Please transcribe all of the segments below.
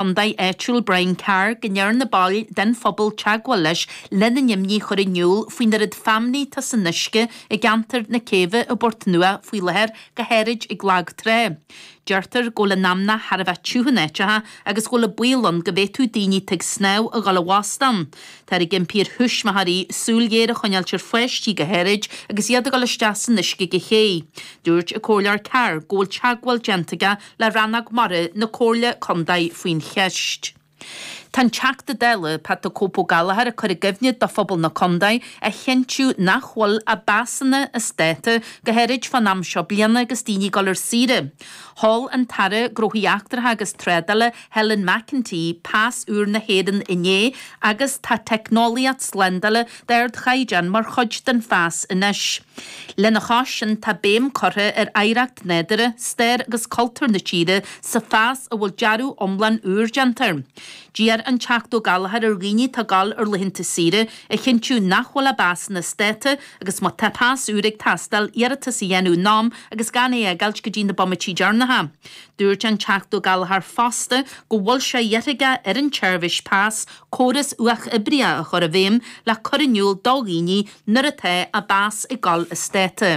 Chontae áitiúil Brian Carr go ndearna baill den phobal teagmháil leis lena n-imní a chur in iúl faoin oiread feamnaí atá san uisce i gceantar na Céibhe i bPort Nua faoi láthair go háirid ag lag trá. Deirtear go bhfuil an fheamnach thar a bheith tiubh in áiteacha agus go bhfuil baol ann go bhféadfadh daoine atá ag snámh a ghabháil i bhfostú ann. Táthar ag impí ar thuismitheoirí súil ghéar a choinneáilt ar pháistí go háirid agus iad ag dul isteach san uisce ón ché. Dúirt an Comhairleoir Carr go bhfuil teagmháil déanta aige le Rannóg Mara na Comhairle Condae faoin cheist. Tá an Teachta Dála, Pat the Cope Ó Gallchóir ag cur i gcuimhne do phobal na Condae a chinntiú nach bhfuil a bpasanna as dáta go háirid fán am seo bliana agus daoine ag dul ar saoire. Sheol an tAire Gnóthaí Eachtracha agus Trádála, Helen McEntee pas úr na hÉireann inné agus tá teicneolaíocht slándála d'ardchaighdeán mar chuid den phas anois. Lena chois sin tá béim curtha ar oidhreacht nádúrtha, stair agus cultúr na tíre sa phas a bhfuil dearadh iomlán úr déanta air. D'iarr an Teachta Ó Gallchóir ar dhaoine atá ag gabháil ar laethanta saoire a chinntiú nach bhfuil a bpasanna as dáta agus má tá pas úr ag teastáil iarratas a dhéanamh in am agus gan é a fhágáilt go dtí na bomaití deireanacha. Dúirt an Teachta Ó Gallchóir fosta go bhfuil sé iarrtha aige ar an tSeirbhís Pas Córas uathoibríoch a chur i bhfeidhm le cur in iúl do dhaoine nuair atá a bpas ag dul as dáta.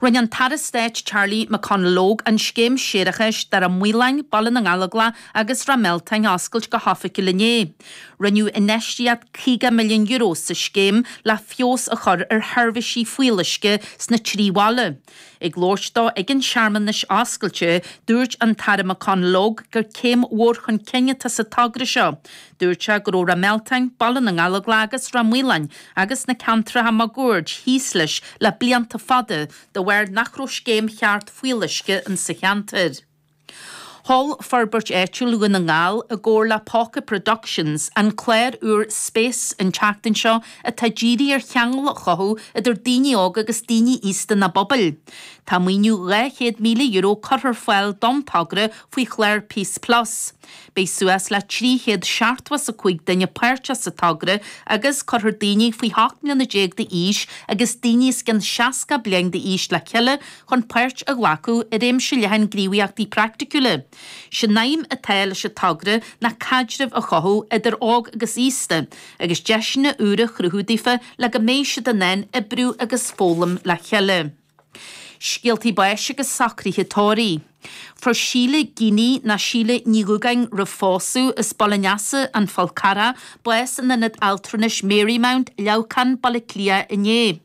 Rinne an tAire Stáit Charlie McConalogue an scéim séarachais do Ráth Maoláin, Baile na nGallóglach agus Ráth Mealtáin a oscailt go hoifigiúil inné. Rinneadh infheistíocht €50 milliún sa scéim le feabhas a chur ar sheirbhísí fuíolluisce sna trí bhaile. Ag labhairt dó ag an searmanas oscailte, dúirt an tAire McConalogue gur céim mhór chun cinn atá sa togra seo. Dúirt sé go raibh Ráth Mealtáin, Baile na nGallóglach agus Ráth Maoláin agus na ceantracha máguaird thíos leis le blianta fada de bharr nach raibh scéim cheart fuíolluisce insa cheantar. Sheol Forbairt Áitiúil Dhún na nGall, i gcomhar le Póca Productions, an clár úr Space an tseachtain seo atá dírithe ar cheangail a chothú idir daoine óga agus daoine aosta ina bpobail. Tá maoiniú €200,000 curtha ar fáil don togra faoi chlár Peace Plus. Beidh suas le 375 duine páirteach sa togra agus cuirfear daoine faoi 18 mbliana d'aois agus daoine os cionn 60 bliain d'aois le chéile chun páirt a ghlacadh i réimse leathan gníomhaíochtaí praiticiúla. Sé'n aidhm atá leis an togra ná caidreamh a chothú idir óg agus aosta agus deiseanna úra a chruthú daofa le go mbeidh siad in ann oibriú agus foghlaim le chéile. Scéaltaí Báis agus Socruithe Tórraimh. Fuair Síle Geaney, nó Síle Ní Dhúgáin roimh phósadh, as Baile an Easa, An Fál Carrach, bás in Ionad Altranais Marymount, Leamhcán, Baile Átha Cliath inné.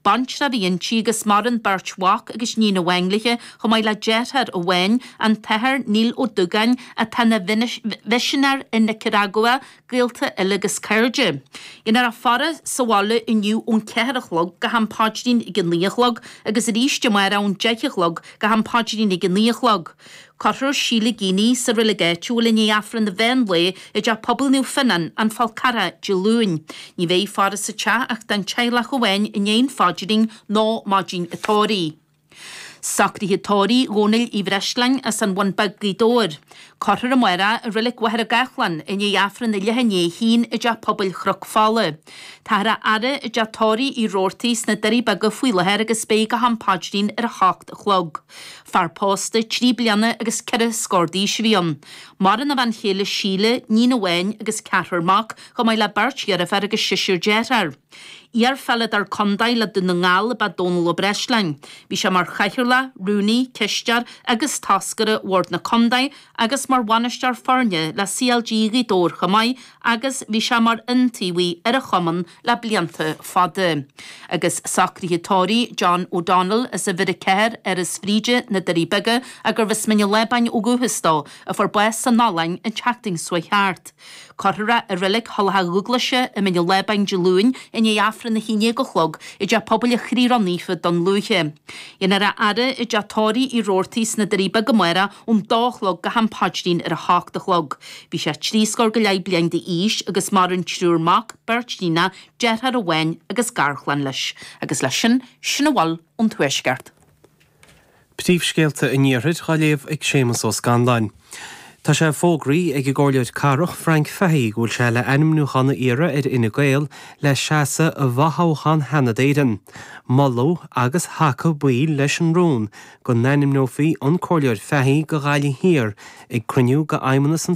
Baintreach a bhí inti agus maireann beirt mhac agus níon amháin léithe chomh maith le deartháir amháin, an tAthair Neil Ó Dúgáin atá ina mhisinéir i Nicearagua, gaolta eile agus cairde. Dhéanfar a faire sa bhaile inniu ón ceathair a chlog go ham paidrín ag a naoi a chlog agus aríst amárach ón deich a chlog go ham paidrín ag a naoi a chlog. Cuirfear Síle Geaney sa roilig áitiúil i ndiaidh Aifreann an mheán lae i dTeach Pobail Naomh Fionnán, An Fál Carrach, Dé Luain. Ní bheidh faire sa teach ach don teaghlach amháin i ndiaidh an phaidrín nó maidin an tórraimh. Socruithe tórraimh Dhónaill Uí Bhreisleáin as an Bhun Beag Gaoth Dobhair. Cuirfear amárach é i Roilig Mhachaire Gathlán i ndiaidh Aifreann a leath i ndiaidh a haon i dTeach Pobail Chnoc Fola. Táthar á fhaire i dTeach Tórraimh Uí Rabhartaigh sna Doirí Beaga faoi láthair agus beidh go ham paidrín ar a hocht a chlog. Fear pósta, trí bliana agus ceithre scór d'aois a bhí ann. Maireann a bhean chéile Síle, níon amháin agus ceathrar mac, chomh maith le beirt dheirféar agus seisear dearthár. Iar-pheileadóir contae le Dún na nGall ab ea Dónal Ó Breisleáin. Bhí sé mar chathaoirleach, rúnaí, cisteoir agus toscaire Bhord na Contae agus mar bhainisteoir foirne le CLG Ghaoth Dobhair chomh maith agus bhí sé mar iontaobhaí ar an chumann le blianta fada. Agus socruithe tórraimh John O'Donnell, as uimhir 4 Áras Bhríde, Na Doirí Beaga, a gurbh as Mín an Lábáin ó dhúchas dó, a fuair bás san Ollainn an tseachtain seo thart. Cuirfear é i Reilig Thulach Dhúghlaise i Mín an Lábáin Dé Luain i ndiaidh Aifreann a hAon Dhéag a Chlog i dTeach Pobail an Chroí Ró-Naofa Dún Lúiche. Dhéanfar a fhaire i dTeach Tórraimh Uí Rabhartaigh sna Doirí Beaga amárach ón dó a chlog go ham paidrín ar a h-ocht a chlog. Bhí sé trí scór go leith bliain d'aois agus maireann triúr mac, beirt níonach, deartháir amháin agus garchlann leis. Agus leis sin, sin a bhfuil ón Tuaisceart. Príomhscéalta an Iarthair dhá léamh ag Séamus Ó Scanláin. Tá sé fógraithe ag an gcomhairleoir cathrach, Frank Fahey, go bhfuil sé le ainmniúchán a iarraidh ar Fhine Gael le seasamh i bhfothoghchán Sheanad Éireann. Moladh agus thacaigh baill leis an rún go n-ainmneofaí an Comhairleoir Fahey do Ghaillimh Thiar ag cruinniú d'Fheidhmeannas an